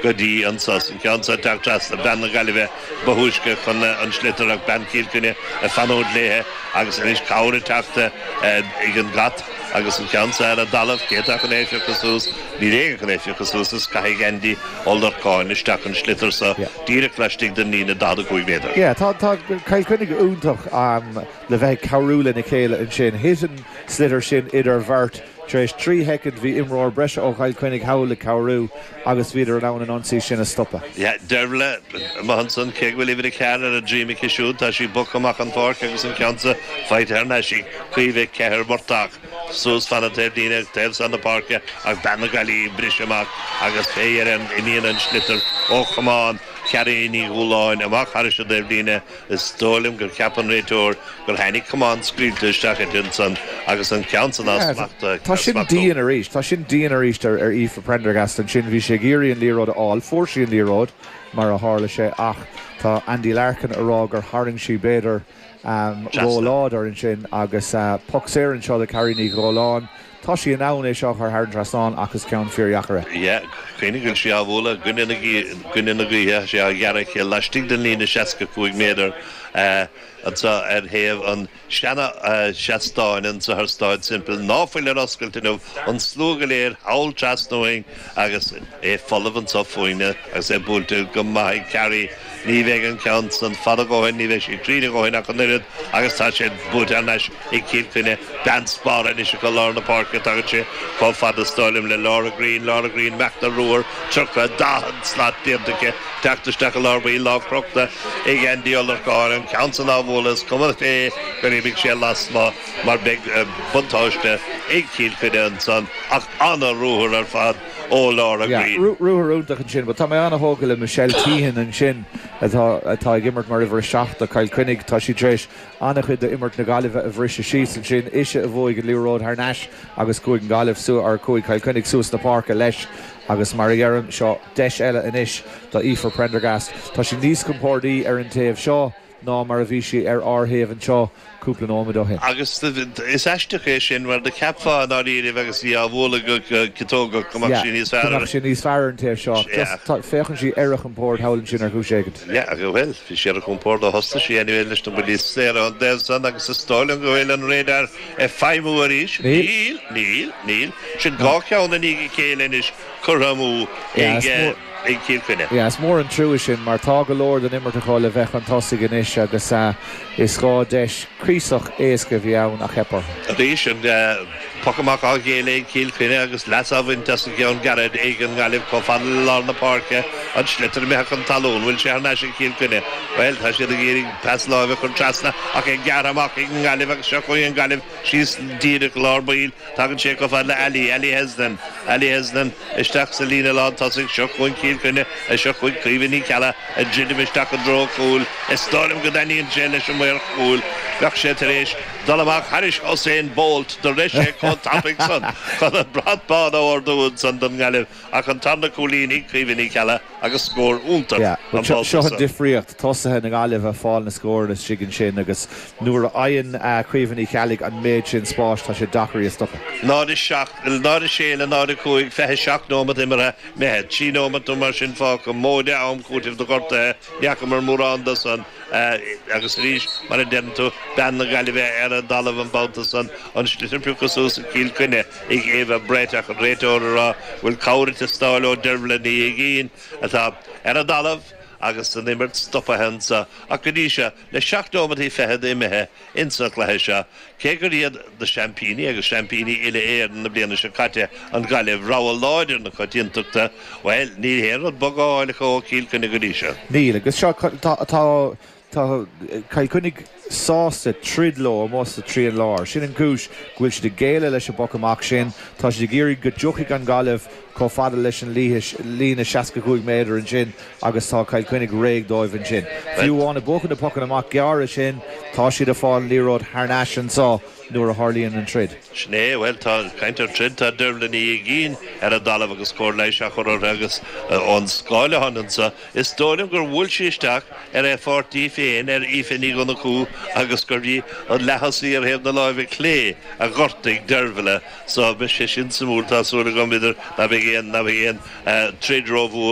go dtí an sos, an ceann so ag teacht trasna bean na Gaillimhe ba thúisce chun an sliotar ach bean Chill Chainnigh ag fanúint léithe agus anois cabhair ag teacht ag an gcat agus an ceann so ar an dtalamh, cé atá chun é a phiocadh suas, níl éinne chun é a phiocadh suas is caithfidh Aindí Ó Lorcáin isteach an sliotar so díreach laistigh den líne 45 méadar. Tá Cill Chainnigh iontach le bheith ag cabhrú lena chéile ansin, thit an sliotar sin idir bheirt. Tar éis trí shoicind bhí imreoir breise ó Chill Chainnigh thall ag cabhrú agus bhíodar in ann an ionsaí sin a stopadh. Dearbhla, maith ansan, cé go bhfuil uimhir a ceathair ar a droim aici siúd, tá sí bogtha amach an pháirc agus an ceann san faighte thar n-ais ag Caoimhe Keher Murtagh. Suas fan na taobhlíne an taobh san na páirce ag bean na Gaillimhe ag briseadh amach agus fé dheireadh imíonn an sliotar ó chamán Charrie Ní Dhúláin amach thairis an dtaobhlíne Is dóigh liom gur cheap an réiteoir gur tháinig camán scaoilte isteach idir ansan agus an ceann san á smachtú. Tá sin dian arís. Tá sin dian arís ar Aoife Prendergast ansin. Bhí sí ag iarraidh an liathróid a fháil. Fuair sí an liathróid, mar a tharla sé, ach tá Andy Larkin ag rá gur tharraing sí, b'fhéidir, róláidir ansin agus poc saor anseo do Carrie Ní Dhúláin. Tá sí in ann é seo a chur thar an trasnán ach is ceann fíordheacair é. Yeah, cuimhnigh go bhfuil sí á bhualadh i gcoinne na gaoithe, tá sí á ghearradh aici laistigh den líne 65 méadar anseo ar thaobh an tseana-sheastáin, an Southern Stand, timpeall ná fuil ar oscailt inniu, an slua go léir thall trasna uainn. Agus é folamh anso fúinne, agus é buailte go maith ag Carrie, ní bheidh an ceann san fada a dhóthain, ní bheidh sé cruinn a dhóthain ach an oiread, agus tá sé buailte thar n-ais ag Cill Chainnigh. Bean spártha anois acu lár na páirce, tagann sé chomh fada is dóigh liom le Laura Greene, Laura Greene ag imeacht ina ruathar, tríocha, daichead slat déanta aici ag teacht isteach i lár baill, lámh crochta ag Andy Ó Lorcáin, an ceann san á bhualadh, is cuma cé gur imigh sé lasmuigh mar beidh buntáiste ag Cill Chainnigh ansan ach. An-ruathar ar fad ó Laura Greene. Yeah, ruathar iontach ansin but tá mé an-thógtha le Michelle Teehan ansin atá ag imirt mar uimhir a seacht do Chill Chainnigh. Tá sí tar éis an-chuid d'imirt na Gaillimhe a bhriseadh síos ansin. Ise a bhuaigh an liathróid thar n-ais agus chuaigh an Gaillimh suas, or chuaigh Chill Chainnigh suas na páirce leis agus mar a dheirim, seo deis eile anois do Aoife Prendergast. Tá sí níos compordaí ar an taobh seo. ná mar a bhí sí ar ár thaobh anseo cúpla nóiméad ó shin. Agus is aisteach é sin, mar do cheapfá i ndáiríribh agus í á bhualadh go ciotógach go mbeadh sí níos fearr, mbeadh sí níos fearr ar an taobh seo. Ach just féachann sí ar a compord thall ansin ar chúis éigin. Yeah, bhuel, bhí sí ar a compord ó thosnaigh sí anyway leis na buillí saora ón dtaobh san agus is dóigh liom go bhfuil an radar ag feidhmiú arís. Níl, níl, níl. Sin dhá cheann i ndiaidh a chéile anois curtha amú ag. i gCill Chainnigh. Is mór an trua sin mar tá go leor den imirt acu le bheith chun tosaigh anois agus is dhá dheis cuíosach éasca a bhí ann ach theip orthu. Arís, an poc amach á ghéilleadh ag Cill Chainnigh agus leas á bhaint as an gceann gairid ag an nGaillimh chomh fada le lár na páirce. An sliotar imithe chun talún. Bhfuil sé thar n-ais ag Cill Chainnigh? Bhuel, tá siad ag iarraidh pas láimhe a chur trasna ach é gearrtha amach ag an nGaillimh agus seo chugainn an Ghaillimh síos díreach i lár baill Tagann sé chomh fada le Ally, Ally Hesnan, Ally Hesnan, isteach sa líne lán tosaigh, seo chugainn Cill Chainnigh, a seo chugainn Caoimhe Ní Cheallaigh, ag druidim isteach i dtreo cúil, is dóigh liom go dtaitníonn sé leis an maor cúil, bheadh sé tar éis dul amach thar Usain Bolt do rith sé chomh tapaidh san chun an brat bán a ardú ansan don nGaillimh. Ach an tarna cúilín ag Caoimhe Ní Cheallaigh agus scór iontach an babhta seo. Difríocht, tosaithe na Gaillimhe ag fáil na scóranna istigh ansin agus nuair a fhaigheann Caoimhe Ní Cheallaigh an méid sin spáis tá sé deacair í a stopadh. 0-7 le 0-6 le 0-5, 27 nóimeat imeartha imithe. Trí nóimeat nó mar sin fágtha, móide am cúitimh do ghortuithe, ní fhacamar mórán de san. Agus arís, mar a deireann tú, bean na Gaillimhe ar an dtalamh an babhta san, an sliotar pioctha suas ag Cill Chainnigh. ag Ava Brett ach an réiteoir ag rá go bhfuil cabhair ag teastáil ó Dervla Ní Uiginn atá ar an dtalamh agus an imirt stopaithe anseo ach go dtí seo le seacht nóimeataí fichead imithe ins an chluiche seo cé gur iad na seaimpíní agus seaimpíní uile-Éireann na bliana seo caite an Ghaillimh rogha láidir na coitiantachta bhuel níl haon rud bog á fháil acu ó Chill Chainnigh go dtí seo. Níl, agus seo atá. Tá Cill Chainnigh sásta troid leo amuigh sa trian láir. Sin an chúis go bhfuil siad ag géilleadh an bpoc amach sin. Tá siad ag iarraidh go dtiocfaidh an Ghaillimh chomh fada leis an líne seasca cúig méadar ansin agus tá Cill Chainnigh réidh dóibh ansin. Fiú amháin ag buachan na pocanna amach gearra sin, tá siad ag fáil an liathróid thar n-ais anseo nuair a tharlaíonn an troid. Sin é. Bhuel, ag caint ar throid, tá Dervla Ní Uiginn ar an dtalamh agus cóir leighis á chur uirthi agus ón scáileán anseo, Is dóigh liom gur bhuail sí isteach ar a páirtí féin, ar Aoife Ní Dhonnchú, agus gurbh í an leath-thosaí ar thaobh na láimhe clé a ghortaigh Dervla, só, beidh sé sin suimiúil, tá súil agam anois ná beidh, ná beidh aon troid rómhór.